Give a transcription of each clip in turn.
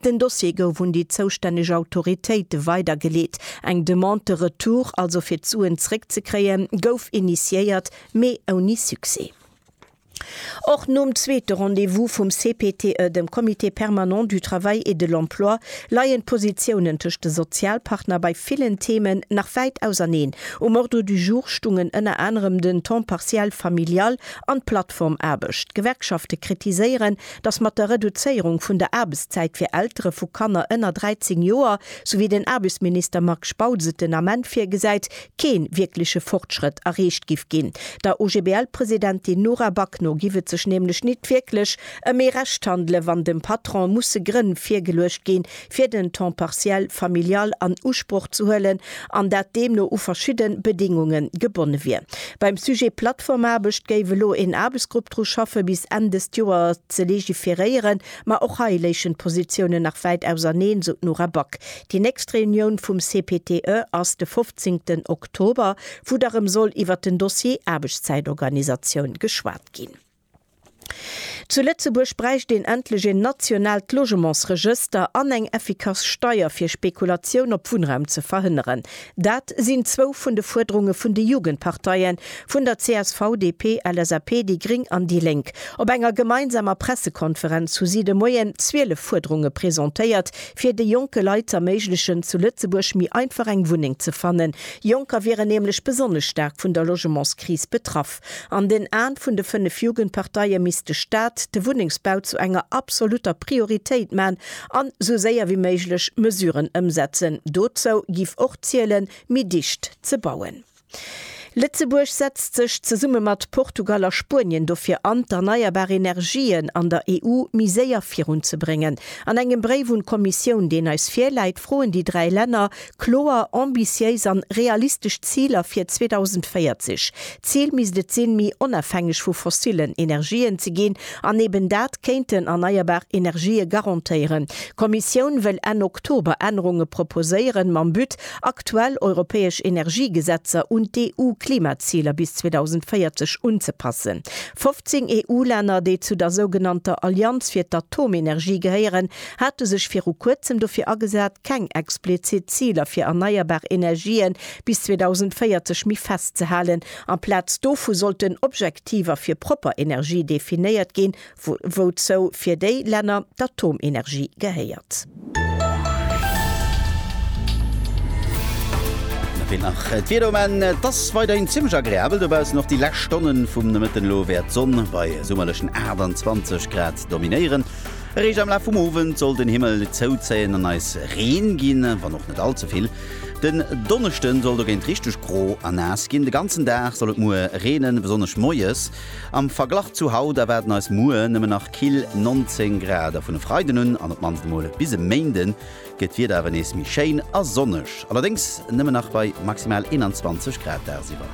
Den Dossier gouf un déi zoustänneg Autoritéite weidergeleet. Eng Demande de retour, also fir d'Suen zréckzekréien, gouf initiéiert, mee ouni Succès. Och nom zweete Rendez-vous vum CPTE, dem Comité permanent du travail et de l'emploi, leien d'Positiounen tëscht de Sozialpartner bei villen Themen nach wäit auserneen. Um Ordre du jour stungen ënner anerem den Temps partiel familial an d'Plattformaarbecht. D'Gewerkschafte kritiséieren, dass mat der Reduzéierung vun der Aarbechtszäit fir Eltere vu Kanner ënner 13 Joer, sou wéi den Aarbechtsminister Marc Spautz et den Ament virgesäit, kee wierkleche Fortschrëtt erreecht giff ginn. Der OGBL-Presidentin Nora Back no giff et sech nämlech nit wierklech ëm ee Recht handelen, wann dem Patron musse Grënn virgeluecht ginn, fir den Temps partiel familial an Usproch ze huelen an dat deemno u verschidde Bedingunge gebonne wier. Beim Sujet Plattformaarbecht géif elo een Aarbechtsgrupp dru schaffe bis Enn dëst Joer ze legiferéieren, ma och hei léichen d'Positiounen nach wäit auserneen, esou d'Nora Back. Déi nächst Reunioun vum CPTE ass de 15 Oktober, wou da rëm soll iwwert den Dossier Aarbechtszäitorganisatioun geschwat ginn. Zu Lëtzebuerg bräicht een endlech een nationaalt Logementsregëster an eng effikass Steier fir Spekulatioun op Wunnraum ze verhënneren. Dat sinn zwou vun de Fuerderunge vun de Jugendparteie vun der csv, DP, LSAP, déi gréng an déi lénk. Op enger gemeinsamer Pressekonferenz hu si de Moien 12 Fuerderunge presentéiert, fir de jonke Leit z'erméiglechen, zu Lëtzebuerg méi einfach eng Wunneng ze fannen. Jonker wieren nämlech besonnesch staark vun der Logementskris betraff. An den Aen vun de 5 Jugendparteie misst de Staat de Wunnengsbau zu enger absolutter Prioritéit man an sou séier wéi méiglech Mesuren ëmsetzen. Dozou giff och zielen, méi dicht ze bauen. Lëtzebuerg setzt sech zesumme mat Portugal a Spuenien dofir an, d'erneierbar Energien an der EU méi séier virun ze bréngen. An engem Bréif un d'Kommissioun, deen eis virläit, froen déi 3 Länner Kloer, ambitiéis an realistesch Ziler fir 2040. D'Zil misst et sinn, méi onafhängeg vu fossillen Energien ze ginn an eben dat kéinten erneierbar Energië garantéieren. D'Kommissioun wëll Enn Oktober Ännerunge proposéieren, mam But, aktuell europäesch Energiegesetzer un d'EU-Klimaziler bis 2040 unzepassen. 15 EU-Länner, déi zu der sougenannter Allianz fir d'Atomenergie gehéieren, hate sech viru kuerzem dofir agesat, keng explizit Ziler fir erneierbar Energië bis 2040 méi festzehalen. Amplaz dovu sollten Objektiver fir propper Energie definéiert ginn, wouzou fir déi Länner d'Atomenergie gehéiert. D'Wieder um Enn, Et ass weiderhin zimmlech agreabel dobaussen. Och déi lescht Stonnen vum Nomëtten elo wäert d'Sonn bei summerlechen 28 Grad dominéieren. Eréischt am Laf vum Owend soll den Himmel zouzéien an eis Reen ginn, wann och net all ze vill. Den Donneschden soll dogéint richteg gro a naass ginn. De ganzen Dag soll et muer reenen, besonnesch moies. Am Verglach zu haut erwaarden eis muer nëmmen nach kill 19 Grad a vun e Freiden un an op d'mannst emol bis e Méinden gëtt d'Wieder awer nees méi schéin a sonneg, allerdéngs nëmmen nach bei maximal 21 Grad dagsiwwer.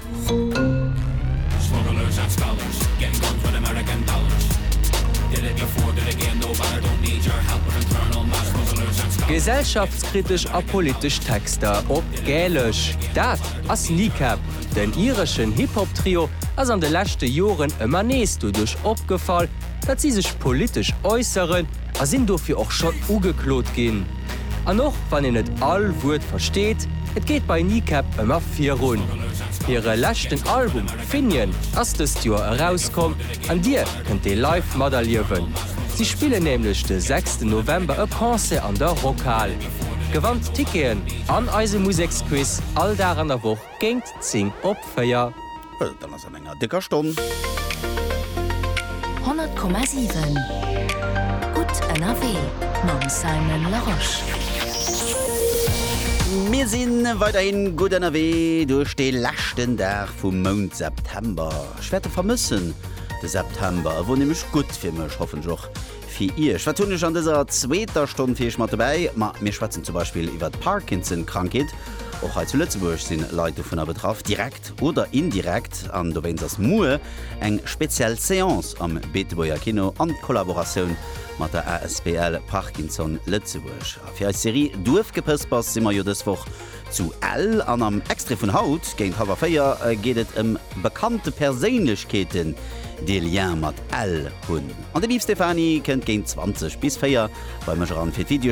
Gesellschaftskritesch a politesch Texter op Gälesch, dat ass Kneecap. Den ireschen Hip-Hop-Trio ass an de leschte Joren ëmmer nees doduerch opgefall, datt si sech politesch äusseren, a sinn dofir och schonn ugeklot ginn. An och wann een net all Wuert versteet, et geet bei Kneecap ëmmer virun. Hire leschten Album Finian ass dëst Joer erauskomm an Dir kënnt dee live materliewen. Si spillen nämlech de sechsten November e Concert an der Rockhal. Gewannt Ticketen an eise Museksquiz all Dag an der Woch Géint 10 op 4. Well dann ass an enger décker Stonn. 100,7 Gutt ënnerwee mam Simon Larosche. Mir si weiderhin gutt ënnerwee duerch de leschten Dag vum Mount September. Ech wäert e vermëssen, de September. E wor nämlech gutt fir mech, hoffentlech och fir Iech. Wat hunn ech an dëser zweeter Stonn fir Iech mat dobäi? Ma mir schwätzen zum Beispill iwwert d'Parkinson-Krankheet. Och hei zu Lëtzebuerg si Leit dovunner betraff, direkt oder indirekt. An dowéinst ass muer eng speziell Seance am Beetebuerger Kino an Kollaboratioun mat der asbl Parkinson Lëtzebuerg. A fir eis Serie Duerfgepëspers si mer jo dës Woch Zu Ell an am Extrait vun haut géint hallwer 4 geet et ëm bekannte Perséinlechkeeten, déi e Lien mat Ell hunn. An de Beef Stéphanie kënnt géint 20 bis 4 bei mech eran fir d'Videospiller.